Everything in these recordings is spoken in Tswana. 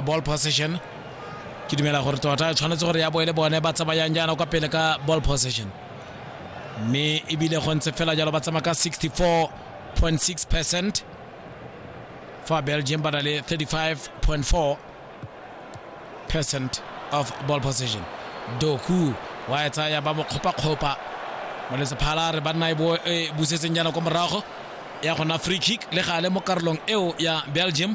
ball possession ke dumela gore tota tshwanetse gore ya bo e le bone ba tsamayang jaana kwa pele ka ball possession mme ebile go ntse fela jalo ba tsamaya ka 64.6 percent fa belgium ba na le 35.4 percent of ball possession doku wa e tsaya ba mo kgopakgopa molesephala re banna e busetseng jaana kwa morago ya gona free kick le gale mo karolong eo ya belgium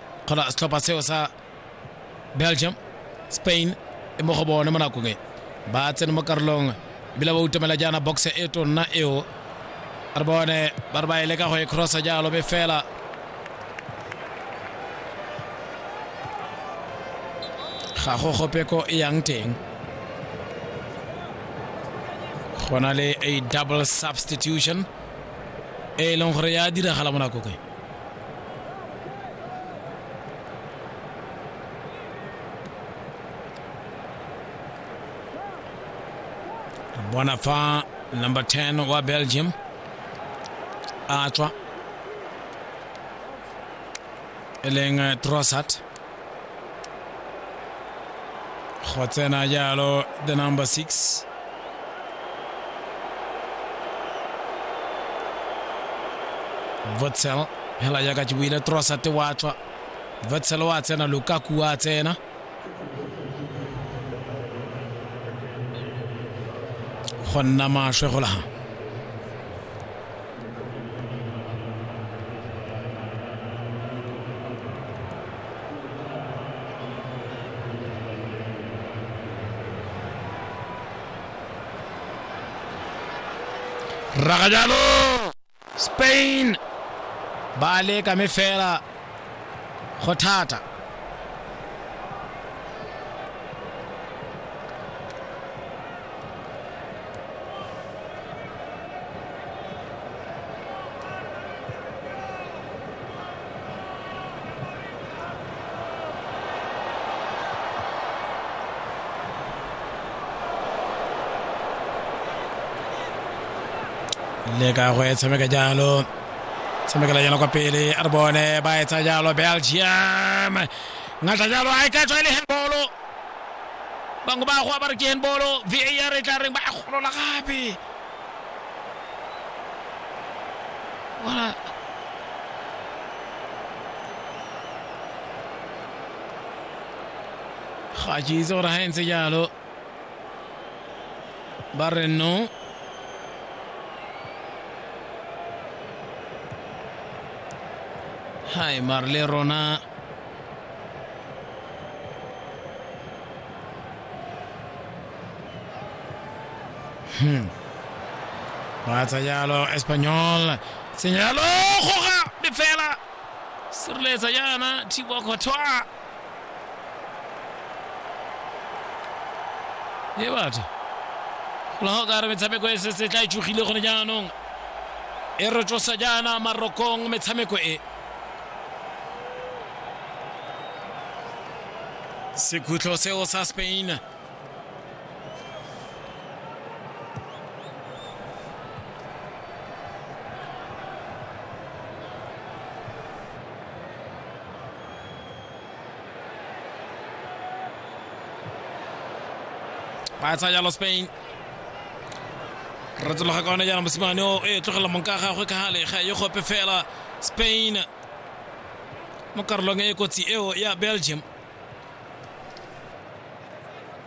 kgona setlhopha seo sa belgium spain e mo go bone mo nakong e ba tsene mo karolong ebile ba utomela jaana box e tonna eo re bone ba re ba e leka go e crossa jalo be fela ga go gopeko e yang teng go na le a double substitution e leng gore ya diragala mo nakong e bona fa number 10 wa belgium a tswa e leng trossart go tsena jalo the number six votsel hela jaaka ke buile trosate wa tswa votsel wa tsena lukaku wa tsena go nna maswe go laga rraga jalo spain ba leka me fela go thata le ka go e tshameka jalo tshamekela jalo kwa pele a re bone ba etsa jalo belgium ngata jalo a e ka tswa e le handbolo bangwe ba goa ba re ke handbolo var e tla reng ba e golola gape bona ga ke itse gore ga e ntse jalo ba re no hai mare le rona hmm. ba tsa jalo espanyol senyalo goga lefela sireletsa yana thibo kgothoa e batho gola ga o ka re metshameko e setse tla e tšogile gone jaanong e re tsosa jaana marokong metshameko e sekhutlho seo sa spain ba e tsaya jalo spain re tsologa ka one jaana mosimane o e tlogela monka gagwe ka gale ga e gope fela spain mo karolong e kotsi eo ya belgium